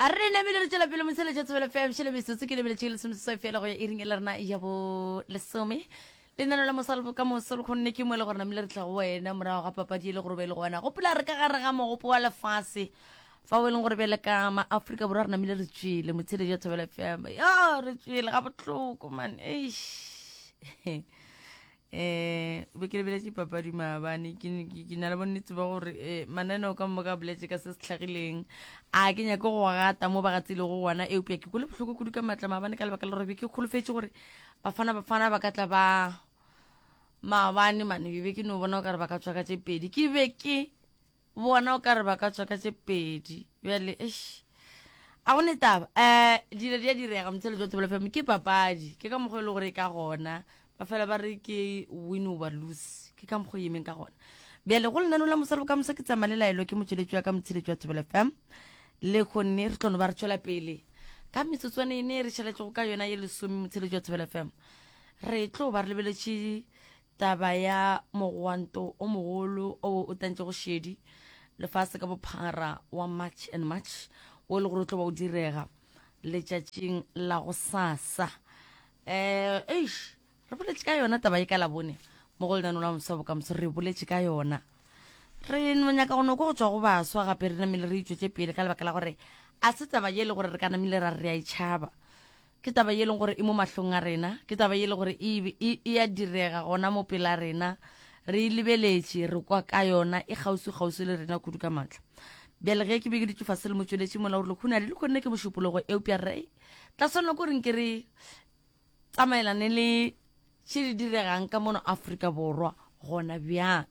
A re namile re tšwela pele moseletša tsebelo fm šele metsotso ke lebeletše lesomeseswai fela go ya iring e le rena ya bo lesome lenano la mosa le bokamoso le kgonne ke mo e le gore namile re tla go wena morago ga papadi e le gore be e le go wena gopola re ka gare ga mogopo wa lefase fa o e leng gore bjale ka maaforika borwa re namile re tšwele motsheledi wa thobela fm yo re tšwele ga botlhoko man eish um be ke lebeletše papadi maabane ke na le bonnetse ba gore eh, mananeo ka moka boletse ka se se tlhagileng a ke nyake go gata mo ba gatsile go gona eupša ke kole bohloko kudu ka maatla maabane ka lebaka la gore be ke kgolofetse gore bafana bafana ba ka tla ba maabane mane be ke no bona o kare ba ka tswaka tse pedi ke be ke Bona o ka re ba ka tswa ka tše pedi bjale eish a go ne taba um dilo di a direga motsheletso wa thobela fm ke papadi ke ka mokgwa e le gore e ka gona ba fela ba re ke win over loose ke ka mokgwa e emeng ka gona bjale go lenano la mosalo ka mosa ke tsamaya le laelo ke motsweletši wa ka motsheletso wa thobela fm le kgonne re tlono ba re tšwela pele ka metsotswane e ne re šaletšego ka yona ye lesome motsheletso wa thobela fm re tlo ba re lebeletše Taba ya mogwanto o mogolo o o tlantšego šedi lefase ka bophara wa March and March wo e le gore o tlo ba o direga letšatšing la go sasa. Eh, eish, re boletše ka yona taba e ka labone mo go lenaneo la moswa bokamoso, re boletše ka yona re nyaka go noko go tswa go baswa gape re namile re itšwetse pele ka lebaka la gore a se taba ye e le gore re ka namile ra re a e tšhaba Ke taba ye e leng gore e mo mahlong a rena, ke taba ye e leng gore e, e, e a direga gona mo pela rena, re e lebeletše, re kwa ka yona, e kgauswi-kgauswi le rena kudu ka matla. Bjale ge ke be ke dutše fase le motšweletši mola, o rile, Khunadi, le kgonne ke mošupologo, eupša re tla swanela ko reng ke re tsamaelane le tše di diregang ka mono Afrika Borwa gona bjang.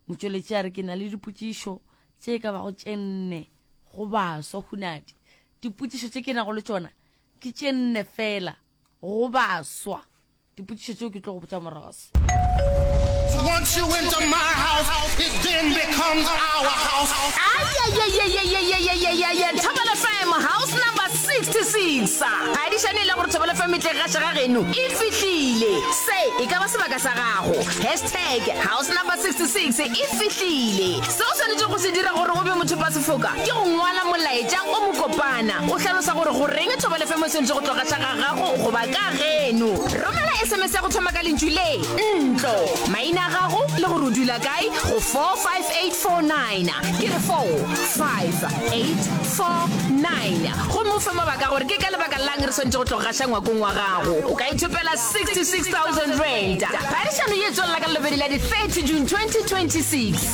Motšweletši a re, ke na le dipotšišo tše e ka bago tše nne go baswa, Khunadi. Dipotšišo tše ke nago le tšona Ke tše nne fela go baswa. Dipotšišo tšeo ke tlo go botša morago se. Once you enter my house, it then becomes our house. Ayayayayayayayayayaya Thobela FM house number 66 ga di šane e le gore Thobela FM e tle ga šega geno e fihlile se e ka ba sebaka sa gago hashtag house number 66 e fihlile se o swanetše go se dira gore o be motho pa sefoka Ke go ngwala molaetša o mokopana o hlalosa gore goreng thobo lefemo e swanetše go tloga tla ga gago goba ka geno. Romela SMS ya go thoma ka lentšu le, ntlo, maina a gago le gore o dula kae go 45849. Ke re 45849 gomme o fe mabaka gore ke ka lebaka lang re swanetše go tloga gaša ngwakong wa gago. O ka ithopela R66,000. Phadišano ye e tswelela ka lelobedi la di 30 June 2026.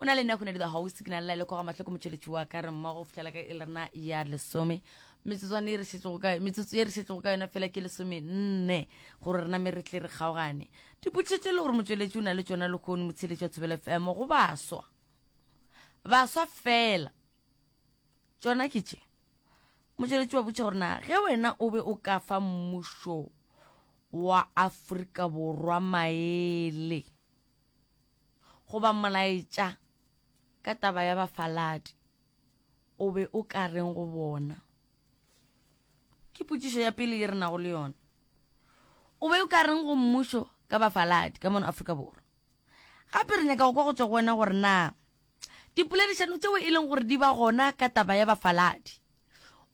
o na le nna kgone dilo gausi ke na lela le koga mahloko motšweletši wa ka re mmogo fihlela ka e lerena ya lesome metsotswana e re šetšego ka metsotso e re šetšego ka yona fela ke lesome nne gore rena me re tle re kgaogane dipotšhetše le gore motšweletši o na le tšona lekgone motsheletši wa thobela fm go baswa baswa fela tšona ke tše motšweletši wa botšha gore na ge wena o be o ka fa mmušo wa aforika borwa maele goba molaetša ka taba ya bafaladi, o be o ka reng go bona? Ke potšišo ya pele ye re nago le yona. O be o ka reng go mmušo ka bafaladi ka mono Afrika Borwa? Gape re nyaka go kwa go tšwa go wena gore na dipoledišano tšeo e leng gore di ba gona ka taba ya bafaladi,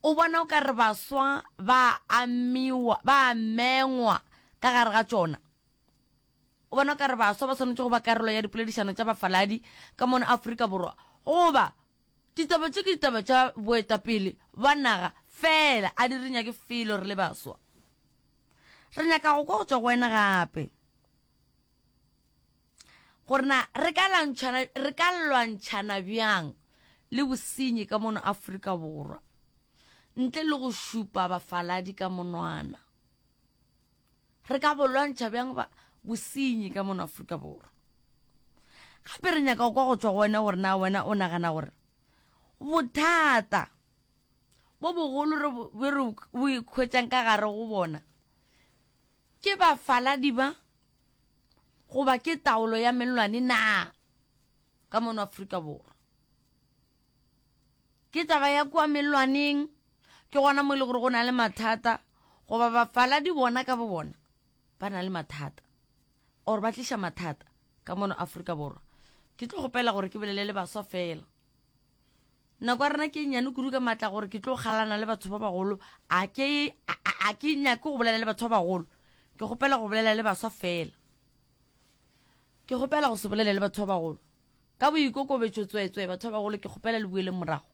o bona o ka re baswa ba amiwa, ba amengwa ka gare ga tšona? O bona o ka re baswa ba swanetše go ba karolo ya dipoledišano tša bafaladi ka mono Afrika Borwa goba ditaba tše ke ditaba tša boetapele bwa naga feela? A di re nyake felo re le baswa. Re nyaka go kwa go tšwa go wena gape gore na re ka lwantšhana re ka lwantšhana bjang le bosenyi ka mono Afrika Borwa ntle le go šupa bafaladi ka monwana. Re ka bo lwantšha bjang ba bosenyi ka mono Afrika Borwa? Gape re nyaka go kwa go tšwa go wena gore na wena o nagana gore bothata bo bogolo re be re bo ikhwetšang ka gare go bona ke bafaladi ba goba ke taolo ya mellwane na ka mono Afrika Borwa? Ke taba ya kua mellwaneng, ke gona mo e le gore go na le mathata, goba bafaladi bona ka bo bona ba na le mathata or ba tliša mathata ka mono Afrika Borwa. Ke tlo kgopela gore ke bolele le baswa fela. Nako ya rena ke e nnyane kudu ka maatla gore ke tlo kgalana le batho ba bagolo, a ke a ke nyake go bolela le batho ba bagolo, ke kgopela go bolela le baswa fela. Ke kgopela go se bolele le batho ba bagolo. Ka boikokobetšo tsweetswee, batho ba bagolo, ke kgopela le boeleng morago.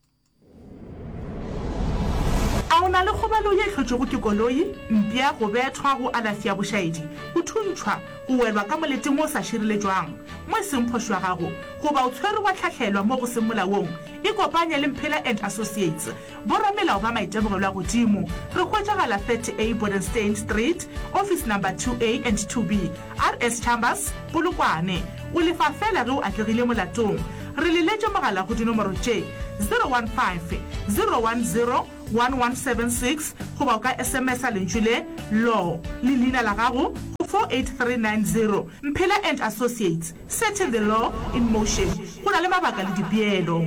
A o na le kgobalo ye hlotšwego ke koloi, mpša, go bethwa, go alafi ya bošaedi, go thuntšhwa, go welwa ka moleteng wo o sa šireletšwang mo e seng phošo ya gago, goba o tshwerwe wa hlahlelwa mo go seng molaong? Ikopanye le Mphela and Associates Boramelao ba maitemogelo a godimo re hwetšagala 30A Bodenstein Street, office number 2A and 2B, RS Chambers, Polokwane. O lefa feela ge o atlegile molatong. Re le letše mogala go dinomoro tše, 015 010 1176 goba o ka SMS-a lentšu le, Law, le leina la gago go 48390. Mphela and Associates, setting the law in motion. Go na le mabaka le dipeelo.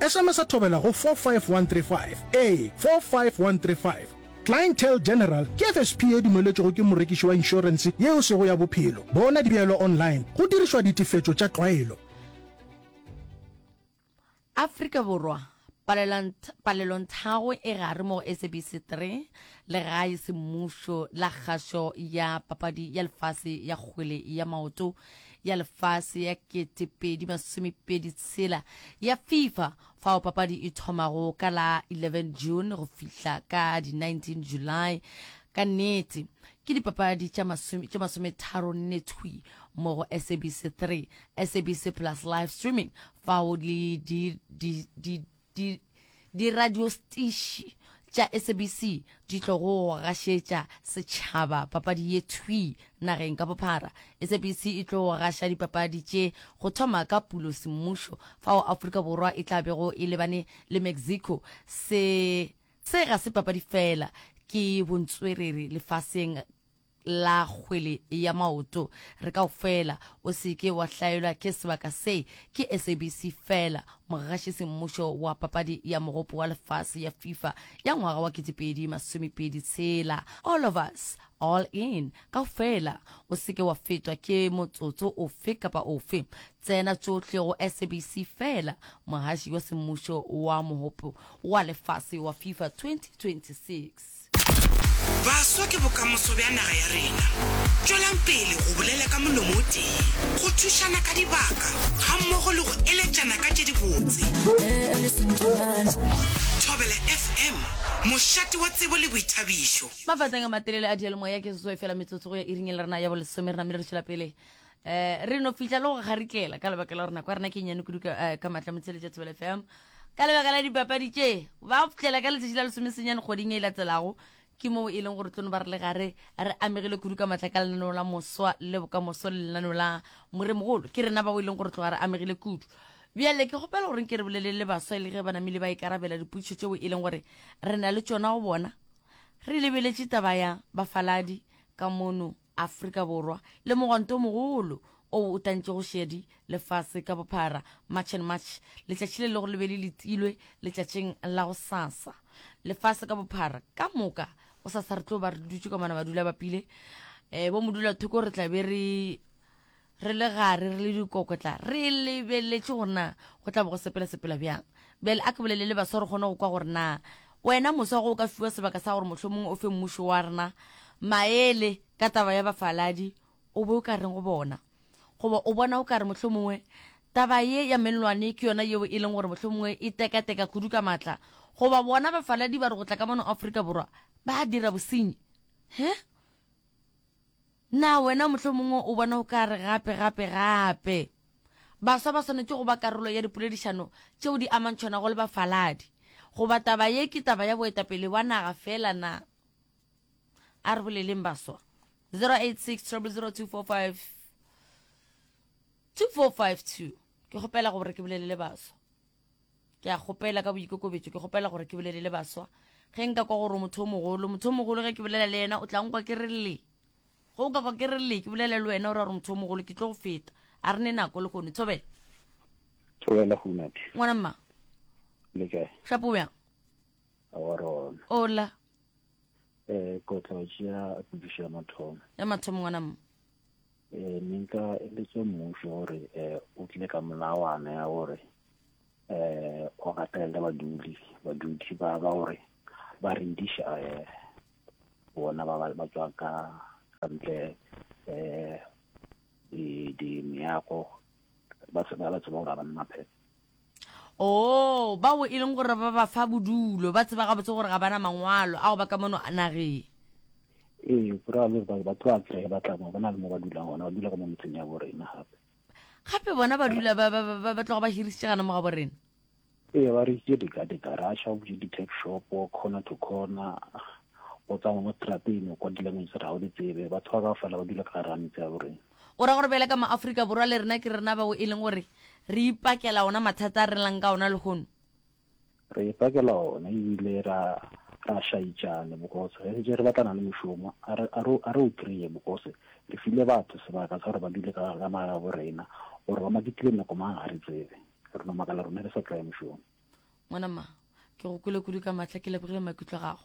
Esemesa thobela go 45135, ee, 45135. Clientele General ke FSP ye dumeletšwego ke morekiši wa inšorense ye e sego ya bophelo. Bona dibeelo online go dirišwa ditefetšo tša tlwaelo. Afrika Borwa, Palelonthago e gare mo go SABC 3, Legae Semmušo la Kgašo ya Papadi ya Lefase ya Kgwele ya Maoto, ya lefase ya 2026 ya fifa fao papadi e thomago ka la 11 june go fihla ka di 19 july ka nnete ke dipapadi tša masometharo nne thwi mo go sabc 3 sabc plus live streaming fao di Di, diradiostiši tša SABC di tlogo gašetša setšhaba papadi ye thwi nageng ka bophara. SABC e tlo gaša dipapadi tše go thoma ka Pulo semmušo, fao Afrika Borwa e tla bego e lebane le Mexico. Se, se ga se papadi feela, ke bontswerere lefaseng. la kgwele ya maoto re kaofela, o se ke wa hlaelwa ke sebaka se, ke SABC feela, mogaši semmušo wa papadi ya mogopo wa lefase ya FIFA ya ngwaga wa ketepedi masomepedi tshela. All of us, all in, kaofela, o se ke wa fetwa ke motsotso ofe kapa ofe, tsena tšohle go SABC feela, mogaši wa semmušo wa mogopo wa lefase wa FIFA 2026. Baswa ke bokamoso bja naga ya rena. Tšwelang pele go bolela ka molomo o tee, go thušana ka dibaka gammogo le go eletšana ka tše dibotse. Thobela FM, mošate wa tsebo le boithabišo. Mafateng a matelele a diyalemoya ke seswai fela metsotso go ya iring e le rena ya bolesome re namile re tšwela pele eh re no fihla le go kgarikela ka lebaka la gore nako ya rena ke nyane kudu ka eh, ka matla motsheletša tsebele fm ka lebaka la dipapadi tše ba fihlela ka letšatši la lesomesenyane kgoding e latelago ke moo e leng gore tlono ba re le gare re amegile kudu ka matla ka lenaneo la moswa le bokamoso le lenaneo la moremogolo ke rena bao e leng gore tloga re amegile kudu bjale ke kgopela goreng ke re bolelele baswa e le ge ba namile ba ikarabela diputšho tšeo e leng gore re na le tšona go bona re lebeletše taba ya bafaladi ka mono Afrika Borwa le mogwanto o mogolo o o tlantšego šedi lefase ka bophara March and March, letšatši le lego le be le letilwe letšatšing la go sasa. Lefase ka bophara ka moka go sasa re tlo ba re dutše ka mona badula bapile, eh, bo modula thoko re tla be re Re le gare, re le dikokotla, re lebeletše gore na go tla bo go sepelasepela bjang. Bjale a ke bolele le baswa re kgone go kwa gore na wena moswa ge o ka fiwa sebaka sa gore mohlomongwe o fe mmušo wa rena maele ka taba ya bafaladi, o be o ka reng go bona? Goba o bona o ka re mohlomongwe taba ye ya mellwane ke yona yeo e leng gore mohlomongwe e tekateka kudu ka matla? Goba bona bafaladi ba re go tla ka mono Afrika Borwa ba dira bosenyi? He? Na wena mohlomongwe o bona o ka re gape, gape, gape baswa ba swanetše go ba karolo ya dipoledišano tšeo di amantšhwanago le bafaladi? Goba taba ye ke taba ya boetapele bja naga feela na? A re boleleng baswa. 086 000 245 2452 Ke kgopela gore ke bolelele baswa. ke a kgopela ka boikokobetso ke kgopela gore ke bolele le baswa ge nka kwa gore motho o mogolo motho o mogolo ge ke bolela le yena o tla nkwa ke re le ge o ka kwa ke re le ke bolele le wena o ra gore motho o mogolo ke tlo go feta a re ne nako le kgone tshobela tshobela gonate ngwana mma le kae shapo o yang awarona ola um eh, kotla o tšea pudišo ya mathomo ya mathomo ngwana mma eh, ne nka eletse mmušo gore eh, o tle ka molawana ya gore eh o gatelele badudi badudi ba ba gore ba rediša eh bona ba ba tswa ka kantle eh di di meago ba tseba ba tseba gore ga ba nna phepho Oo, bao e leng gore ba ba fa bodulo ba tseba gabotse gore ga bana mangwalo a go ba ka mono nageng ee go ra le gore ba tloa tseye ba tla mo ba na le mo ba dulang gona ba dula ka mo metseng ya borena gape gape bona ba dula ba- ba- ba- ba- ba tloga ba hirisitše gana mo ga borena ee ba rekitše dikadika ra sha botse di-tech shop corner to corner go tsamaya mo strateng kwa dilanguage tse ga o di tsebe batho ba ka fela ba dula ka gare ga metse ya borena Go ra gore bjale ka maAfrika Borwa le rena ke rena bao e leng gore re ipakela ona mathata a re lang ka ona lehono. Re ipakela ona ebile ra ra šaitšane bokose ge setse re batlana le mošomo a re a re a re o kreye bokose re file batho sebaka sa gore ba dule ka ka maga bo rena gore ba makitile nako mang ga re tsebe re no makala rona re sa tlaye mošomo. Ngwana mma, ke go kwele kudu ka mahla ke lebogile maikutlo a gago.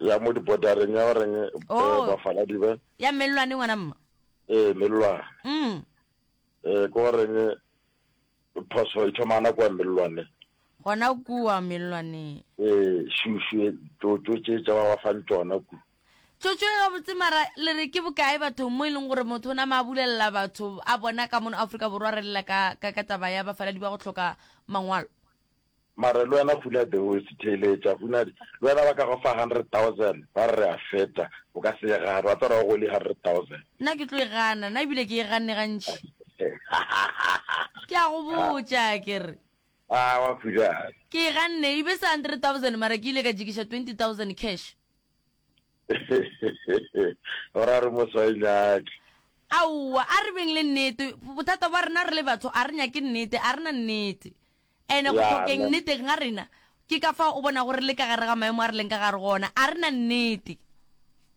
ya mo dibodareng ya goreng eh, Oh. bafaladi ba ya mellwane ngwana mma ee mellwane mm. ee ke goreng eh, phoso e thoma nako ya mellwane gona kua mellwaneng ee šušu e, tsotso tše tša ba ba fang tsona ku tsotso e gabotse mara le re ke bokae bathong mo e leng gore motho o nama a bulelela batho a bona ka mono aforika borwa re lela ka ka- ka taba ya bafaladi ba go tlhoka mangwalo Mare lwena Huner the host theeletša Huner lwena ba ka go fa hundred thousand ba re re a feta o ka se e gane wa tswara go go li hundred thousand. Nna ke tlo e gana na ebile ke e ganne gantši ke a go botša ke re Aa wa Huner. Ke e ganne e be se hundred thousand mara ke ile ka jikiša twenty thousand cash. O ra re mo sa e nyake. Aowa a re beng le nnete bothata bwa rena re le batho a re nyake nnete a re na nnete. And go hlokeng nneteng ga rena, ke ka fao o bonago re le ka gare ga maemo a re leng ka gare go ona. A re na nnete?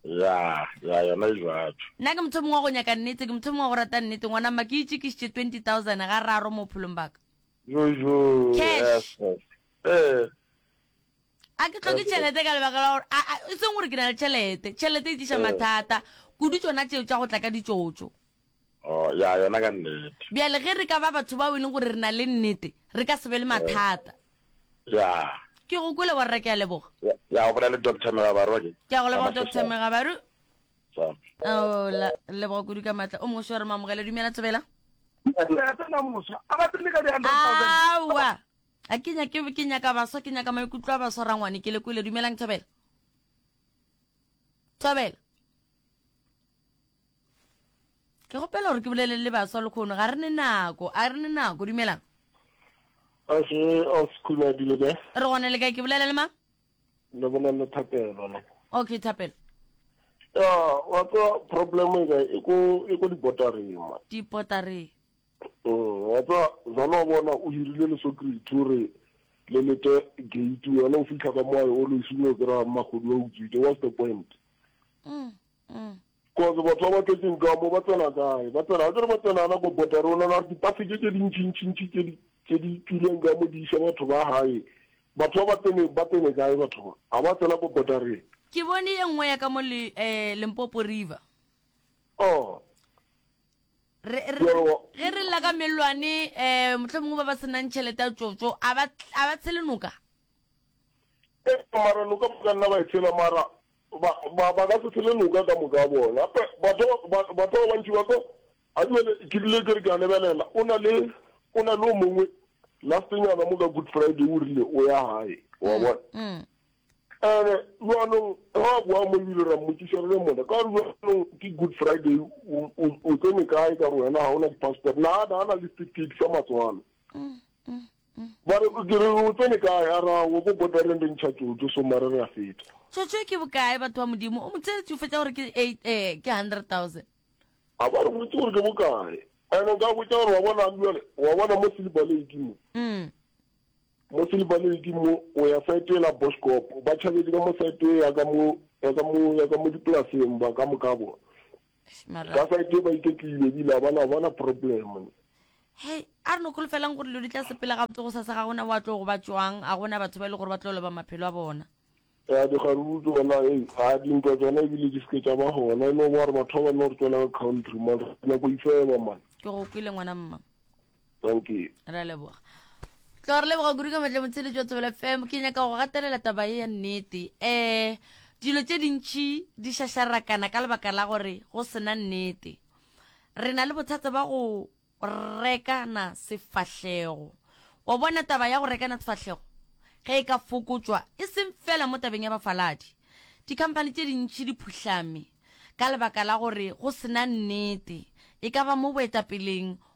Ya, ya, yona e bjalo. Nna ke motho yo mongwe wa go nyaka nnete, ke motho yo mongwe wa go rata nnete. Ngwana mma, ke itšekišitše twenty thousand ga raro mo bophelong bwa ka. Yo, yo, Cash. Ee. A ke hloke tšhelete ka lebaka la gore, a, a, e seng gore ke na le tšhelete, tšhelete e tliša mathata, kudu tšona tšeo tša go tla ka ditšotšo. Oh, ya, yona ka nnete. Bjale ge re ka ba batho bao e leng gore re na le nnete, re ka se be le mathata. Ya. Ke go kwele borra, ke a leboga. Ya, ya, o bolela le Doctor Megabaru ke? Ke a go leboga Doctor Megabaru. Sa. Oh, la, leboga kudu ka matla. O mongwe seo re mo amogele, dumela Tsebela. Aowa. A ke nya ke ke nyaka baswa ke nyaka maikutlo a baswa rangwane ke le kwele dumelang Thobela. Thobela. ke gopela gore ke bolele le baswa lekgono ga re ne nako a re ne nako dumelang okay old school a dile be re gone le kae ke bolela le mang le bolela le thapelo le okay thapelo ya wa tsa problem e ka e ko e ko dipotarema dipotare mm wa tsa zalo bona o hirile le security gore le lete gate wena o fitlha ka moayo o lo isimo kra magodu wa utswite what's the point cause mm, mm. batho ba ba tletseng ka mo ba tsena kae ba tsena ga kere ba tsenana ko bota rona na dipaseke tse dintšintšintši tse di tswileng ka mo di isa batho ba gae batho ba tsene ba tsene kae batho ba ga ba tsena ko bota rena ke bone ye nngwe ya ka mo le eh Limpopo River oh re ge re lla ka melwane eh motlho mongwe ba ba senang tšhelete ya tsotso a ba a ba tshele noka Ee, mara loka ba ka nna ba e tshela, mara ba, ba, ba ka se tshele loka ka moka bona. Pe, batho ba, ba, batho ba bantši ba tlo, a jwale ke rile ke re ke a lebelela, o na le, o na le o mongwe, lastenyana mo ka Good Friday o rile o ya gae, wa mm, bona. Mm. ene jwanong ga a boa mo ebile ra mmotsiša re le mona ka gore jwanong ke good friday o tsene kae ka gore wena ga o na di-passport na a na le setifikeiti sa matswalo mm, mm. Ba re, Ke re, o tsene kae? A re, Aowa, ko kotareng re ntšha tsotso, so mare re a feta. Tsotso e ke bokae, batho ba Modimo? O mo tseletše go fetša gore ke eight, ee, ke hundred thousand. A ba re boditše gore ke bokae. And o ka botša gore, wa bona, bjale, wa bona mo Silver Lake mo, mo Silver Lake mo, o ya site la Boschkop, ba tšhabetše ka mo site ya ka mo, ya ka mo, ya ka mo dipolaseng ba ka moka bona. ka site ba iketlile ebile a bana bona problem hei a re no kgolofelang gore dilo di tla sepela gabotse go sasa ga gona wa tlo go ba tswang a gona batho ba e le gore ba tlo loba maphelo a bona ya dikgaruru tsona e a dintwa tsona ebile di seke tsa ba gona e no ba gore batho ba ba no re tswela ka country man re nako ifeba man ke go kwile ngwana mma thank you re a leboga tlo re leboga kudu ka matle motshele jwa tsebela fm ke nyaka go gatelela taba e ya nnete um dilo tse dintšhi di šašarakana ka lebaka la gore go sena nnete re na le bothata ba go rekana sefahlego wa bona taba ya go rekana sefahlego ge e ka fokotswa e seng fela mo tabeng ya bafaladi dikhamphani tse dintšhi di phuhlame ka lebaka la gore go sena nnete e ka ba mo boetapeleng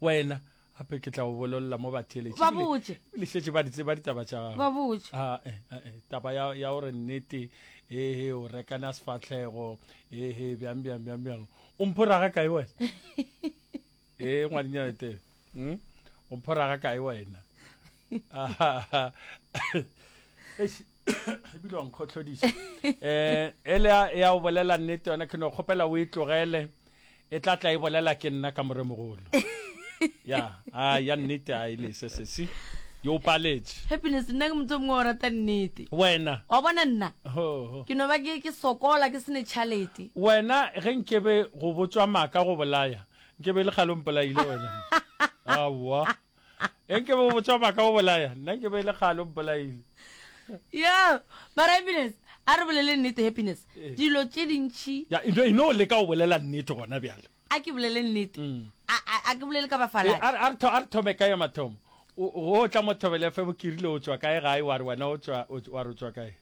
Wena, gape ke tla go bololla mo batheeletše. Ba botše. Le šetše ba di tseba ditaba tša gago. Ba botše. Ah, eh, eh, eh, taba ya, ya gore nnete, ehe, o rekana sefatlhego, ehe, bjang, bjang, bjang, bjang. O mphoraga kae wena? ee, ngwadinyana Tebe. Hmm? O mphoraga kae wena? Ah, ah, ah. Eish. ebile wa nkgotlhodisa um ele ya o bolela nnete yona ke no kgopela o e tlogele e tla tla e bolela ke nna ka moremogolo ya a ya nnete a e lese sesi yo paletse happiness nna ke motho mongwe o rata nnete wena wa bona nna ke no ba ke sokola ke sene chalete wena ge nkebe go botswa maka go bolaya nkebe e le kgale o mpolaile wena aowa enke bo botswa maka o bolaya nna nke be e le kgale o mpolaile yo mara happiness a re bolele nnete happiness eh. dilo tše dintšhi e no le ka o bolela nnete gona bjale a ke bolele nnete mm. a ke bolele ka bafalaa eh, a re thome ka ye mathomo o tla mothobele fe bokirile o tswa kae gae wa re wena wa re o tswa kae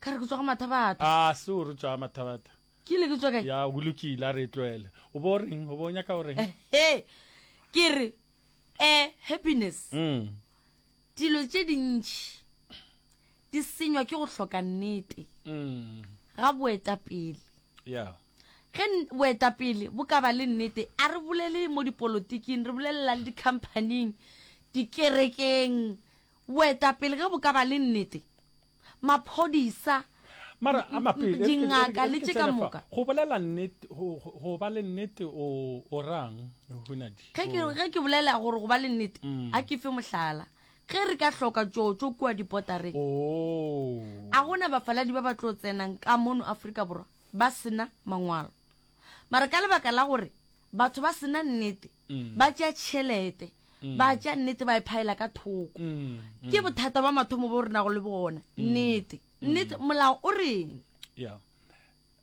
ka re ke tswa go mathabatha a ah, se o re tswa mathabatha Ke ile ke tšwa kae? Ya, go lokile, a re e tloele. O bo o reng? O bo o nyaka go reng? He, ke re, eh, Happiness, Mm. dilo tše dintši di senywa ke go hloka nnete Mm. ga boetapele. Ya. Ge n- boetapele bo ka ba le nnete, a re bolele mo dipolotiking, re bolelela le dikhamphaning, dikerekeng. Boetapele ge bo ka ba le nnete, maphodisa, Mara a mape, e re ke- e re ke- dingaka e re le ke tše ka tsene fa. moka. Go bolela nnete, go- go go ba le nnete o o rang, Hunadi? Ge ke, O- ge ke bolela gore go ba le nnete, Mm. a ke fe mohlala. Ge re ka hloka tšotšo kua dipotareng, Oh. a gona bafaladi ba ba tlo tsenang ka mono Afrika Borwa ba sena mangwalo. Mara ka lebaka la gore batho ba sena nnete, ba tšea tšhelete ba tšea nnete ba e phaela ka thoko ke bothata ba mathomo bo re nago le bona nnete nnete molao o reng ya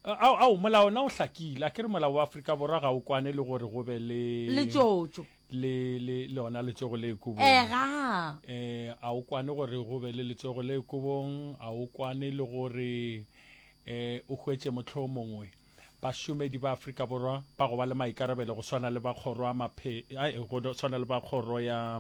ao ao molao na o hlakile a ke re molao wa afrika borwa ga o kwane le gore go be le letšotšo le le le ona letsogo le ekobong ega eh a o kwane gore go be le letsogo le ekobong a o kwane le gore eh o hwetše motlho mongwe Bašomedi ba Afrika Borwa ba go ba le maikarabelo go swana le ba kgoro ya maphe ai go swana le ba kgoro ya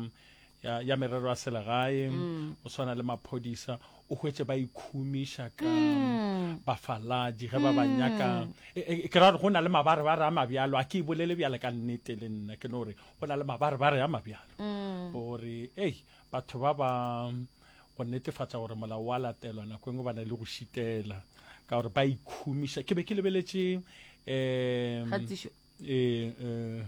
ya, ya merero ya selegae mm. go swana le maphodisa o hwetse ba ikhumiša ka mm. bafaladi ge ba ba mm. nyaka e, e, ke ra gore go na le mabarebare a mabjalo a ke e bolele bjale ka nnete le nna ke no gore go na le mabarebare a mabjalo gore ei batho ba ba go netefatša gore molao wa latelwa nako engwe ba na le go šitela ka gore ba ikhumiša ke be ke lebeletše um kgatišo eh, eh,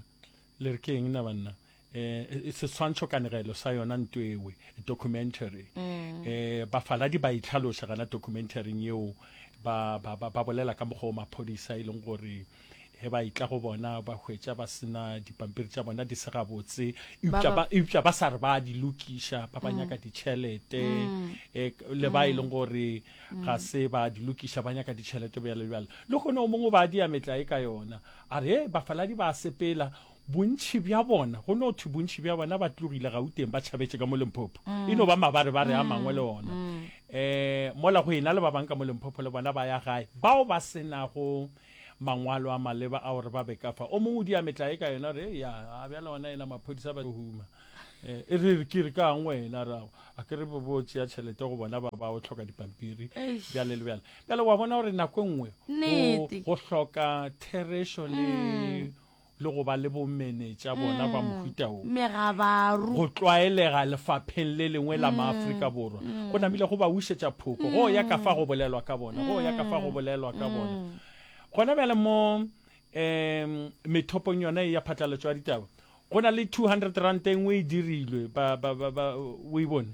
le re ke eng na banna eh, eh, seswantšho kanegelo sa yona nto ewe documentary Mm. eh bafaladi ba itlhaloša gana documentaryng yeo ba ba ba ba bolela ka mokgwa o maphodisa e leng gore ge ba itla go bona ba hwetša ba sena dipampiri tša bona di se gabotse eupša ba sa re ba di lokiša ba ba mm. nyaka ditšhelete mm. e, le ba e mm. leng gore ga se ba di lokiša ba nyaka ditšhelete bjalo bjalo le gone o mongwe ba dia metla e ka yona a re e bafaladi ba sepela bontšhi bja bona go no thwe bontšhi bja bona ba tlogile gauteng ba tšhabetse ka mo lemphopo e no ba mabare ba re a mangwe le ona um mola go ena le ba bangwe ka mo lemphopo le bona ba ya gae bao ba senago Mangwalo a maleba a o re ba be ka fa. O mongwe o di a metlae ka yona, o re, Eya, a bjale gona yena maphodisa ba tlo huma. E re, Ke re ka'ng wena? A re, Ao, a ke re bo bo tšea tšhelete go bona ba ba o hloka dipampiri, bjale le bjale. Bjale wa bona gore nako e nngwe go hloka therešo le le go ba le bomenetša bona ba mohuta wo megabaru. Go tlwaelega lefapheng le lengwe la Maafrika Borwa go namile go ba wišetša phoko go ya ka fa go bolelwa ka bona, go ya ka fa go bolelwa ka bona. Gona bjale mo um methopong yona e ya phatlalatšo ya ditaba go na le two hundred ranta e nngwe e dirilwe, ba, ba, ba, ba, o e bone?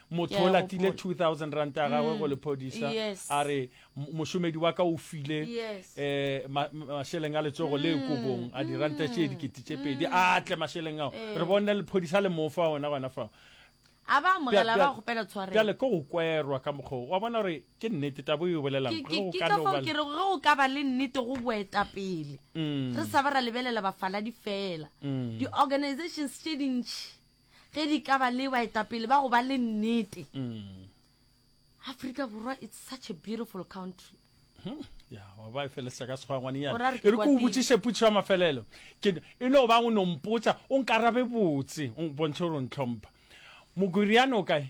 motho o latile 2000 rand a gagwe go mm. lephodisa a re mošomedi wa ka o file um mašeleng a letsogo le mm. kobong a diranta tše dikete tše pedi mm. a tle mašeleng ao eh. re bone lephodisa le mofa ona gona fao bjale ko go kwerwa ka mokgoo wa bona gore ke nnete tabo e bolelangkere go ka ba le nnete go boetapele re sa ba ra lebelela bafaladi fela di-organizations tše dintšhi ge di ka ba le baetapele ba go ba le nnete mm. africa borwa it's such a beautiful country hmm. ya wa ba e feleletsa ka segwangwanenyana e re ko o botsiše putšo ya mafelelo ke e no bang o nompotsa o nkarabe botse o bontšhe gore o ntlhompha mokoriane o kae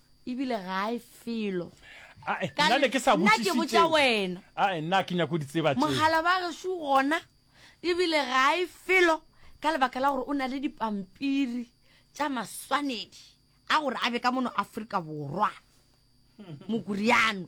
ebile ga e felo Ae, Ka nna ne ke sa nna ke botšiše botša tšeo. wena Ae, nna ke nyako di tseba tšeo. mogala ba gešu gona ebile ga e felo ka lebaka la gore o na le dipampiri tša maswanedi a gore a be ka mono afrika borwa mokuriano